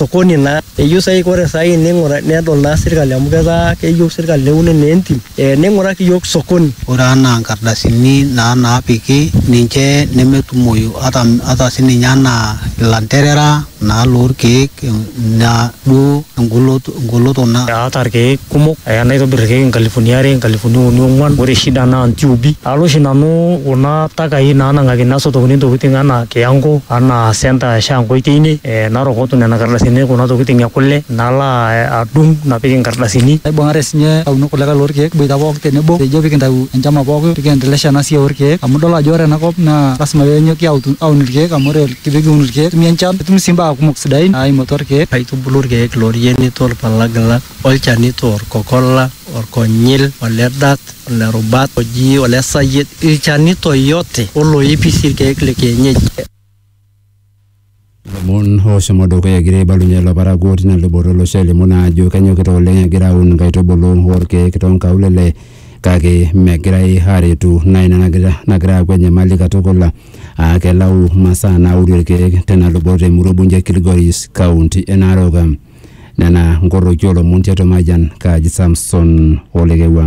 sokoni naa eyieu sai ore sai ning'ura nedol naa sirkali amu ketaa keyieu sirkali neuni naa entim eh, ning'uraki iyiok sokoni. Ore anaa nkardasini naa naapiki ninche nemetumoyu ata, ata sininye anaa ilanterera naa lorkeek ina duo engoloto, engoloto na. Aata irkeek kumok aya naitobir irkeek inkalifuni are inkalifuni uni ong'uan ore shida naa intiubi alo oshi nanu kuna takai nanang'akini nasotokini intokiting anaa kiyango anaa centre e shango teine. eh, narokotu nena kardasini kuna tokitin e kule nalo a- adung napik inkardasini Naibung'are sinye aunok kulikae lorkeek kiboita pooki tenebo pejo pikintau enchama pooki pikiendelesha ena siai orkeek amu idol ajo ore enakop naa lasima penyoki autu- aun irkeek amu ore pikiun irkeek netumi enchan netumi sii imbaa kumok sidain naimu atua irkeek aitubulu irkeek lorienito orpalagila olchanito orkokola orkonyil ole dat ole rubat oji ole sayiet ilchanito yote oloipi sii irkeek le kienyeji Ilomon oshomo dukuya egira aibalunye ilo parakuo tina luboto olosho elimu naa ajo kenyokita oleng egira aun inkaitubulu orkeek tonkaulele kake megirae aretu naa ina nagira nagira aaku enyamali katukul aa kelau imasaa nauni irkeek tena luboto emurua ebunje kilgoris kaunti e narok nena nkorroki olomon tiatua mayian kaaji samson olekewua.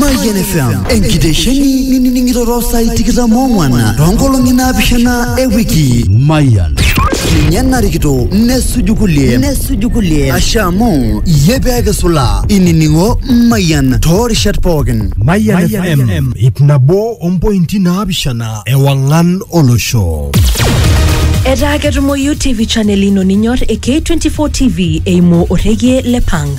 Mayian FM enkitesheni nining'ito too saai tikitam oong'wan too nkolong'i naapishana e wiki. Mayian. Ninye narikito nesuju kulie nesuju kulie ashe amu iyie pee kisulaa inining'o Mayian too rishat pookin. Mayian FM ip nabo ompointi naapishana ewang'an olosho. Etaa ketumoyu TV channel ino ninyor e K24 TV eimu orrekie le Pang.